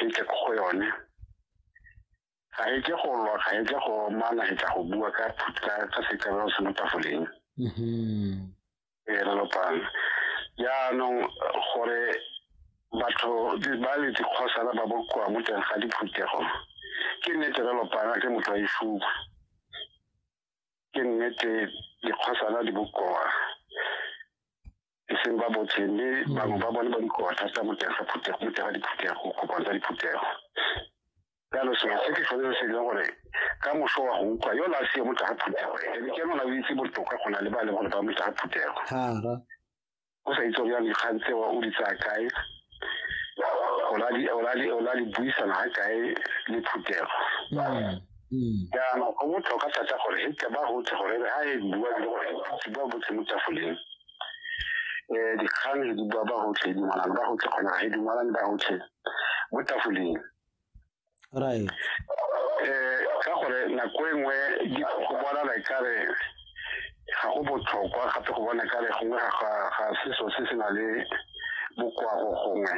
e tle ko go yone ga e ke go lwa ga e ke go mana e tla go bua ka ka setabelo se mo tafoleng mm-hmm. e re lopang jaanong gore batho ba le dikgosana ba bokoa mo teng ga diphuthego ke nnete re lopana ke motho a isupa ke nnete dikgosana di bokoa e seng ba botlhe mme bangwe ba bone ba dikota tsa moteng ga phuthego moteng ga diphuthego kopano tsa diphuthego jalo sengwe se ke tshwanetse se leng gore ka moso wa go utlwa yo la seo mo tsa phuthego ebe ke nona o itse botoka go na le ba leng gore ba mo tsa phuthego o sa itse ya dikgang tse o di tsaya kae o la di buisana ga kae le phuthego mm. Mm. jaanong go botlhokwa thata gore e tle ba gotse gore re a e bua le gore se ba botse mo tafoleng um eh, dikgang le di bua ba gotlhe e dumalane ba gotlhe kgona ga e dumalane ba gotlhe mo tafoleng right eh ka gore nako e nngwe di go bona la ikare ga go botlhokwa gape go bona kare gongwe ga se so se se na le bokoago gongwe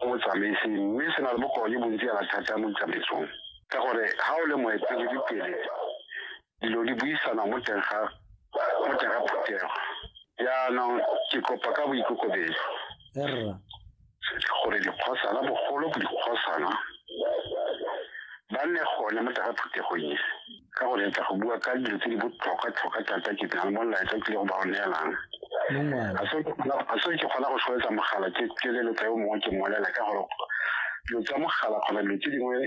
go botsamaisi mme se na le bokao jo bontsi yana thata mo ditsamaisong ka gore ga o le moeteledipele dilo di buisana mo teng ga mo teng ga phuthego jaanong ke kopa ka boikokobedi gore dikgosana bogolo dikgosana ba nne gone mo teng ga phuthegong e ka go letsa go bua ka dilo tse di botlhokwa-tlhokwa thata ke tla mo laetsa tlile go ba o neelang a se ke kgona go soletsa mogala ke leletsa yo mongwe ke molela ka gore dilo tsa mogala kgona dilo tse dingwe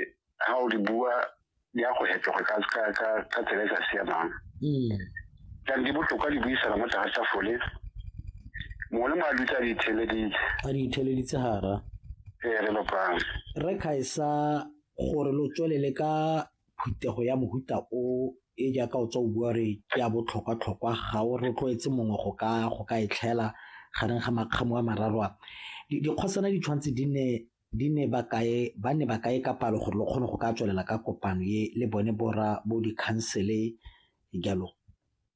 ga o di bua di ya go hetoga ka tsela e sa siamang jang mm. di botlhokwa di buisana mo tlase sa fole mongwe le mongwe a dutse a di itheleditse a di itheleditse gara ee re lopang re kgaisa gore lo tswelele ka phuthego ya mohuta o e jaaka o tswa o bua re ke ya botlhokwa-tlhokwa ga o rotloetse mongwe go ka go ka e tlhaela gareng ga makgamo a mararo a dikgosana di tshwanetse di ne di ne ba kae ba ne ba kae ka palo gore lo kgone go ka tswelela ka kopano e le bone bora bo dikhansele jalo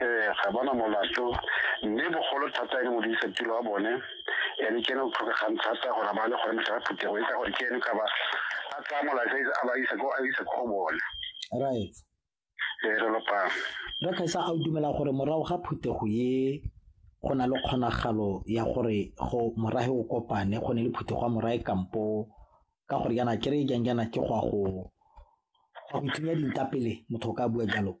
ee ga bona molato mme bogolo thata e le modirisetiro wa bone ene ke ene o tlhokegang thata gore ba le gore mosala phuthego e ka gore ke ene ka ba a tsaya molato a ba isa ko a isa ko go bone right ee re lopang dokesa a o dumela gore morago ga phuthego ye go na le kgonagalo ya gore go morahe o kopane go ne le phuthego ya morahe kampo ka gore yana kere jang jana ke go a go go ithunya dinta pele motho o ka bua jalo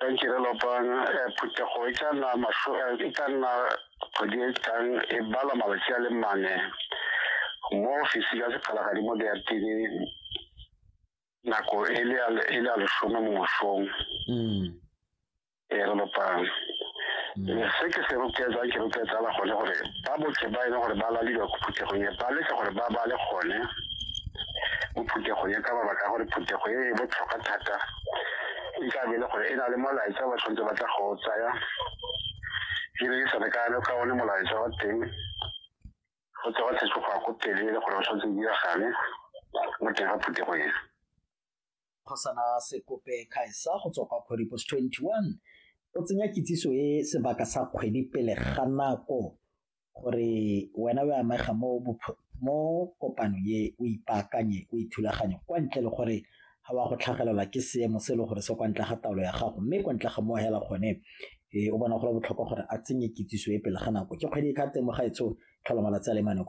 ka ntirelo pang eh, phuthego e tla nna masho eh, e tla nna kgwedi e tlang e balwa malatsi a le mane mo ofisi ya sekgalagadi mo diatini nako e le a- e le a lesome mo mosong Mm. e re lopang Mm. se ke se roketsang ke roketsala gone gore ba botlhe ba e leng gore ba laliwa ko phuthegong e ba letse gore ba bale gone mo phuthegong e ka mabaka a gore phuthego e e botlhokwa thata e ka be e le gore e na le molaetsa ba tshwanetse ba tla go o tsaya ke ne ke sa lekane ka one molaetsa wa teng go tswa wa tshetse go ya ko pele e le gore o tshwanetse o diragale mo teng ga phuthego ena phasana sekope khaesa go tswa kwa kgwedi post 21 o tsenya kitsiso e sebaka sa kgwedi pele ga nako gore wena o amega mo mo kopano e o ipaakanye o ithulaganye kwa ntle le gore ga wa go tlhagelelwa ke seemo se e le gore se kwa ntle ga taolo ya gago mme kwa ntle ga mo hela gone e o bona gore botlhokwa gore a tsenye kitsiso e pele ga nako ke kgwedi e ka temoga e tsho tlhola malatsi a le mane kwa